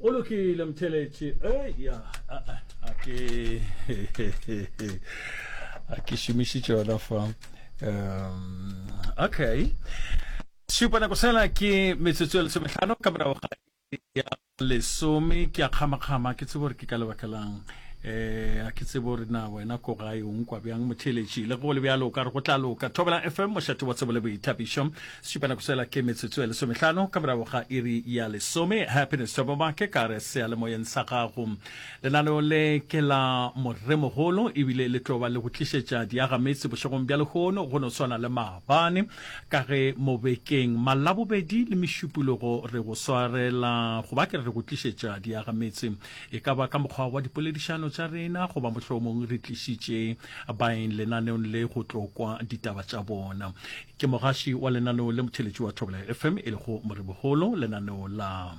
o lokile mtheletše eya a ke a ke šomišitše yona fa um okay šupa nako sela ke metsotso ya lesometlhano ka morago ga ya lesome ke a kgamakgama ke tsebo gore ke ka lebaka lang eh a ke tsebo re na wena ko gae o nkwa bjang motheletši le go le bjalo ka re go tla loka thobela fm mošate wa tsebo le boithabišo Šupa nako sela ke metsotso e lesomehlano ka morago ga iri ya lesome. Happiness Thoboma ke ka re sealemoyeng sa gago. Lenaneo le ke la moremogolo ebile le tlo ba le go tlišetša diagametse bošegong bja lehono go no swana le maabane ka ge mo bekeng malabobedi le mešupulogo re go swarela goba ke re go tlišetša diagametse e ka ba ka mokgwa wa dipoledišano tša rena goba mohlomong re tlišitše baeng lenaneong le go tlo kwa ditaba tša bona. Ke mogaši wa lenaneo le motheletši wa Thobela FM e lego Morebogolo, lenaneo la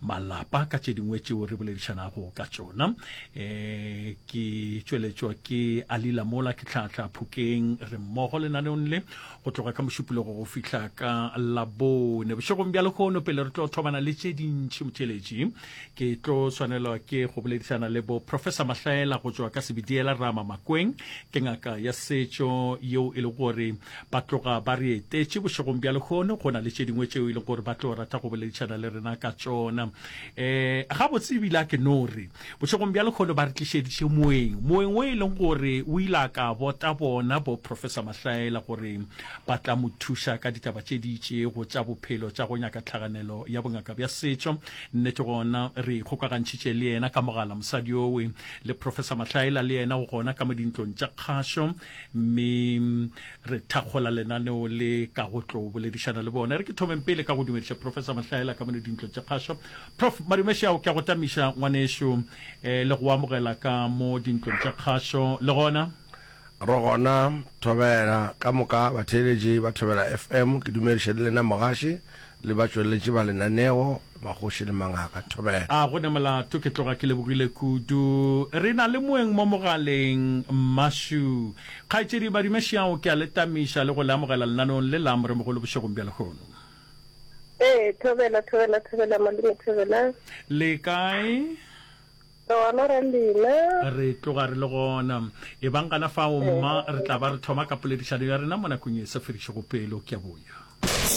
malapa ka tše dingwe tšeo re boledišanago ka tšona. E, ke tšweletšwa ke Alila Mola ke tlhahla Phokeng re mmogo lenaneong le go tloga ka mošupologo go fihla ka labone bošegong bja lehono pele re tlo thomana le tše dintši motheletši. ke tlo swanelwa ke go boledišana le bo professor mahlaela go tšwa ka sebediela rama makweng ke ngaka ya setšo yeo e le gore ba tloga ba re etetše bošegong bja lekgono go na le tše dingwe tšeo e leng gore ba tlo rata go boledišana le rena ka tšona um eh, ga botse ebile a ke no re bošegong bja lekgono ba re tlišediše moeng moeng o e leng gore o ile a ka bota bona bo professor mahlaela gore ba tla mo thuša ka ditaba tše di itšego tša bophelo tša go nyaka tlhaganelo ya bongaka bja setšo Nnete gona re ikgokagantšhitše le yena ka mogala, mosadi owe. Le Professor Mahlaela le yena o gona ka mo dintlong tša kgašo, mme re thakgola lenaneo le ka go tlo boledišana le bona. E re ke thomeng pele ka go dumediša Professor Mahlaela ka mone dintlong tša kgašo. Prof. Madumešiao, ke a go tamiša ngwanešu, le go amogela ka mo dintlong tša kgašo le gona. Re gona Thobela, ka moka batheeletši ba Thobela FM ke dumediša le lena mogaši le batšweletši ba lenaneo, Magoši le Mangaka Thobela. A go ne molato, ke tloga ke lebogile kudu. Re na le moeng mo mogaleng, Mmashu. Kgaetšedi Badimašiao ke a le tamiša le go le amogela lenaneong le la Moremogolo bošegong bja lehono. Ee, Thobela, Thobela, Thobela, Malome Thobela. Le kae? Re gona re lena. Re tloga re le gona. Ebang gana fao, mma, re tla ba re thoma ka poledišano ya rena mo nakong e sa fedišego pelo. Ke a boya.